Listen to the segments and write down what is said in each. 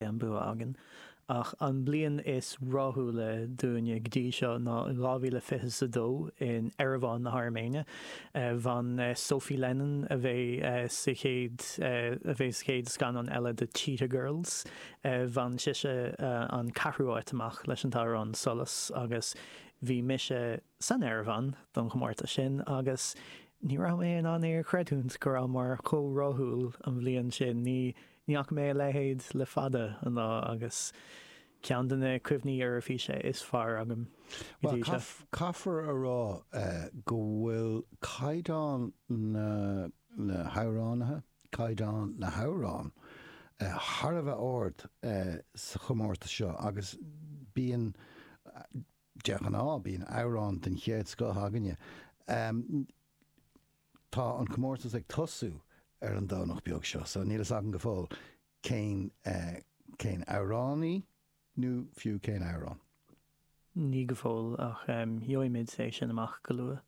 an bua againn. Ach an bliain is ráthúla dúinne go dtí seo ná 2022 in Eireaván na hAirméine. Bhain Sophie Lennon, a bheidh sa chéad a bheidh sa chéad scannán eile de Cheetah Girls, bhain sise an ceathrú áit amach leis an t-amhrán Solas agus bhí mise, san Eirvean don chomórtas sin agus ní raibh mé in ann é a chreidiúint go rabhamar chomh rathúil an bhliain sin, ní fhaca mé a leithéid le fada an lá agus ceann de na cuimhní Eoraifíse is fearr agam go dtí seo. Bhuel, caithfear a rá go bhfuil caighdeán na hamhránaithe, caighdeán na hamhrán, thar a bheith ard sa chomórtas seo agus bíonn, De ghnáth bíonn amhrán den chéad scoth againne. Tá an comórtas ag tosú ar an Domhnach beag seo so níl fhios agam go fóill cén cén amhránaí nó fiú cén amhrán. Ní go fóill ach gheobhaimid é sin amach go luath.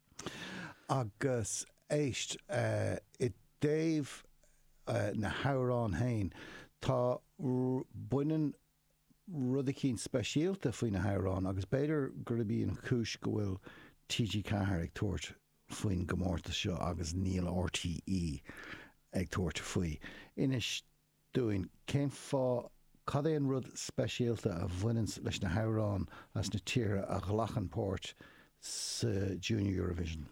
Agus éist, i dtaobh na hamhráin féin, tá baineann rud eicínt speisialta faoi na hamhráin agus b'fhéidir gurb í an chúis go bhfuil TG4 ag tabhairt faoin gcomórtas seo agus níl RTÉ ag tabhairt faoi. Inis dúinn, cén fáth, cad é an rud speisialta a bhaineanns leis na hamhráin as na tíortha a ghlacann páirt sa Junior Eurovision?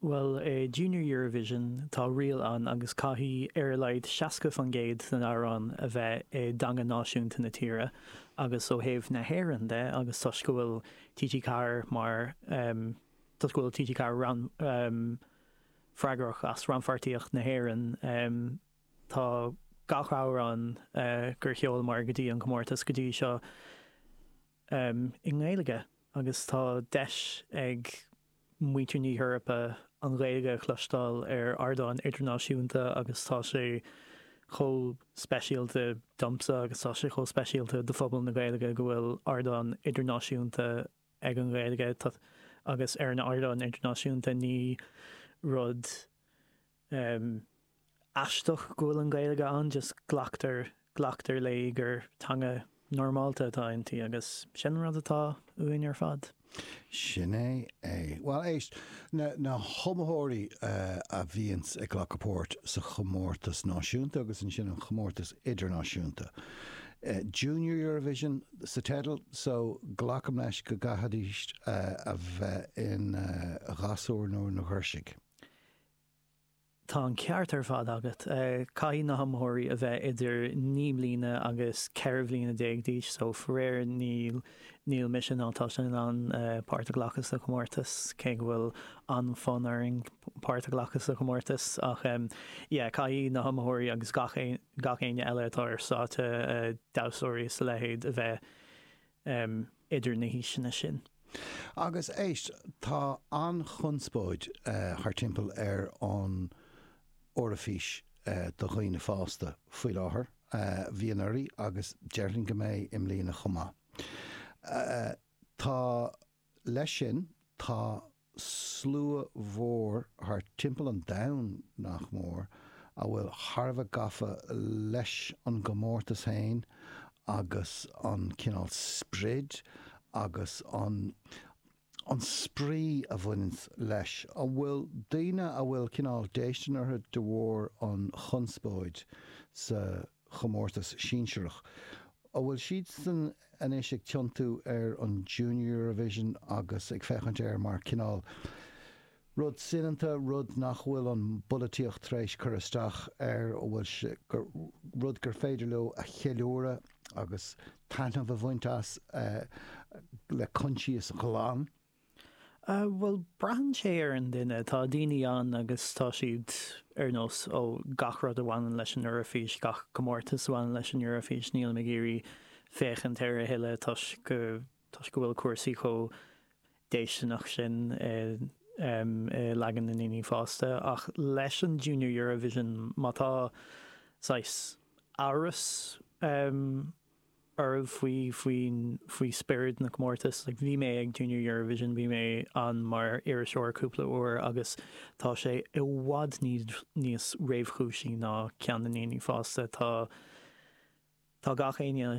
Bhuel, i Junior Eurovision tá riail ann agus caithfidh ar a laghad 60% den amhrán a bheith i dteanga náisiúnta na tíre agus ó thaobh na hÉireann de agus toisc go bhfuil TG Ceathair mar, em, toisc go bhfuil TG Ceathair ran, em, freagrach as rannpháirtíocht na hÉireann, em, tá gach amhrán, eh, gur sheolamar go dtí an comórtas go dtí seo, i nGaeilge agus tá deis ag muintir na hEorpa an Ghaeilge a chloisteáil ar ardán idirnáisiúnta agus tá sé chomh speisialta domsa agus tá sé chomh speisialta do phobal na Gaeilge go bhfuil ardán idirnáisiúnta ag an Ghaeilge agus ar an ardán idirnáisiúnta ní rud aisteach go bhfuil an Ghaeilge ann, just glactar, glactar léi gur teanga normálta atá inti agus sin an rud atá uainn ar fad. Sin é é. Bhuel éist, na, na hiomaitheoirí a bhíonns ag glacadh páirt sa chomórtas náisiúnta agus ansin an chomórtas idirnáisiúnta, Junior Eurovision sa teideal, so glacaim leis go gcaithfidís a bheith ina ghasúr nó ina ghirseach. Tá an ceart ar fad agat. Caithfidh na hiomaitheoirí a bheith idir naoi mbliana agus ceithre bliana déag d'aois so faraor níl níl mise ná tusa in ann páirt a ghlacadh sa chomórtas cé go bhfuil an-fhonn orainn páirt a ghlacadh sa chomórtas ach yeah caithfidh na hiomaitheoirí agus gach gach éinne eile atá ar stáitse damhsóirí is a leithéid a bheith em idir na haoiseanna sin. Agus éist, tá an-chonspóid eh thar timpeall ar an Eoraifís eh do dhaoine fásta faoi láthair, eh bhí anuraidh agus déarfainn go mbeidh i mbliana chomh maith. Ach tá, leis sin, tá. slua mhór thart timpeall an domhain, nach mór, a bhfuil thar a bheith gafa leis an gcomórtas féin agus an cineál sprid agus an an spraoi a bhaineann leis, a bhfuil daoine a bhfuil cineál déistin orthu de bharr an chonspóid sa. chomórtas sinsearach. An bhfuil siadsan anois ag tiontú ar an Junior Eurovision agus ag féachaint air mar cineál rud soineanta, rud nach bhfuil an pholaitíocht tar éis cur isteach air, rud gur féidir leo a cheiliúradh agus taitneamh a bhaint as le coinsias ghlan? Bhuel, braitheann sé ar an duine. Tá daoine ann agus tá siad ar nós, ó, gach rud a bhaineann leis an Eoraifís, gach comórtas a bhaineann leis an Eoraifís, nílim ag iarraidh féachaint air a thuilleadh toisc go, toisc go bhfuil cúrsaí chomh déistineach sin i, em, i leagan na ndaoine fásta. Ach leis an Junior Eurovision, má tá saghas amhras, em, oraibh faoi, faoi, faoi spiorad na comórtas. Like, bhí mé ag Junior Eurovision, bhí mé ann mar iriseoir cúpla uair agus tá sé i bhfad níos, níos réchúisí ná ceann na ndaoine fásta. Tá, tá gach éinne.